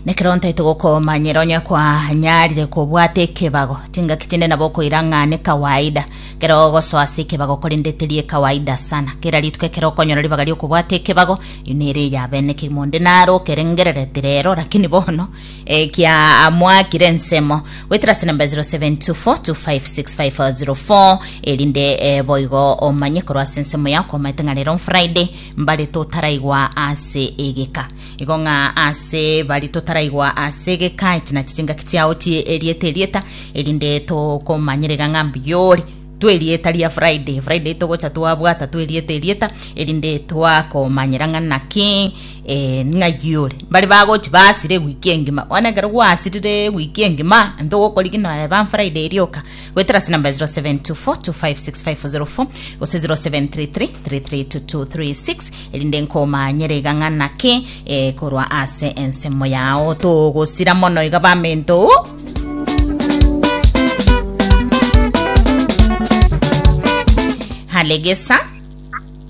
Nekero ntaito gokomanyera onye kwanyarire kobwata ekebago chingaki chinde nabo okoira ng'a ne kawaida kero ogosoa ase ekebago korende teri ekawaida sana kera rituko ekero okonyora ribaga riokobwata ekebago iyo nere eyabenekiri monde naro okerengerereti rero lakini bono eh, kia amwakire ensemo goetera ase namba 0724256504 erinde eh, boigo omanye korwa ase ensemo yao komaete ng'a rero on friday mbare totaraigwa ase egeka. Igo ng'a ase bari totaraigwa ase egeka, echi nachi chingaki chiao chie erieta erieta, erinde tokomanyerega ng'a mbuyore twe erieta ria Friday. Friday togocha twabwata twe erieta erieta, erinde twakomanyera ng'a naki eh, ng'a yore. Mbare bagochi basire ewiki engima, bono ekero gwasirire ewiki engima, ntogokorigi noe ba Friday rioka, Goetera ase namba 0724256504 gose 0733332236 erinde nkomanyere iga ng'a naki eh, korwa ase ensemo yao togosira mono iga bamento halegesa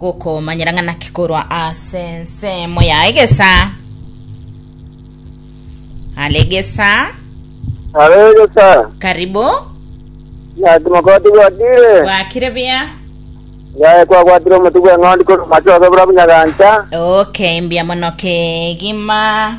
Gokomanyera ng'a naki korwa ase ensemo ya egesa are egesa Are egesa. karibu Naki mokoti gwakire. gwakire bia Yaye kwagwatire omotu bw'eng'ondi korwa macho ase bura bunyagancha. okay mbia mono kegima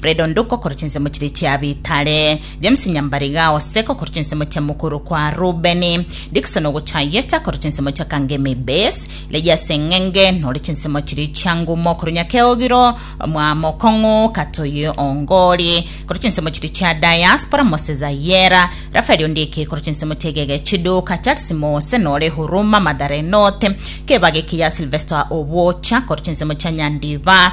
Fred Onduko korwa chinsemo chiria chia Bitare, James Nyambariga Oseko korwa chinsemo chia mokoro kwa Rubeni, Dickson Ogochayeta korwa chinsemo chia Kangemi Base, Legia Seng'enge nore chinsemo chiria chia Ngumo korwa Nyakeogiro, Mwamokong'u Katoyi Ongori korwa chinsemo chiria chia Diaspora, Moses Ayera, Raphael Ondieki korwa chinsemo chia Igege Chiduka, Charles Mose nore Huruma Mathare North, Kebage Kiya Sylvester Obocha korwa chinsemo chia Nyandiba,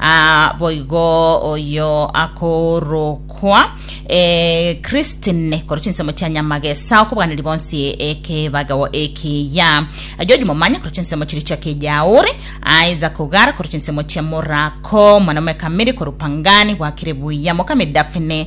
Aa boigo oyo akorokwa eh, Christine korwa chinsemo chia Nyamagesa okobwaneria bonsi ekebagao ekiya George Momanya korwa chinsemo chiria chia Kejauri Isaac Ogara korwa chinsemo chia Morako Mwanaume Kamiri korwa Pangani bwakire buya Mokami Daphne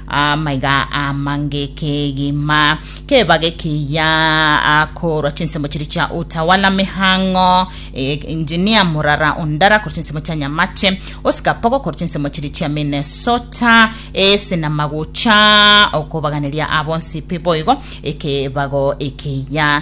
Amaiga amange kegima kebage kiya akorwa chinsemo chiri chia utawala mihang'o eh, engineer murara ondara korwa chinsemo chia nyamache osikapogo korwa chinsemo chiri chia minnesota ese na magocha okobaganiria abonsipi boigo ekebago ekiya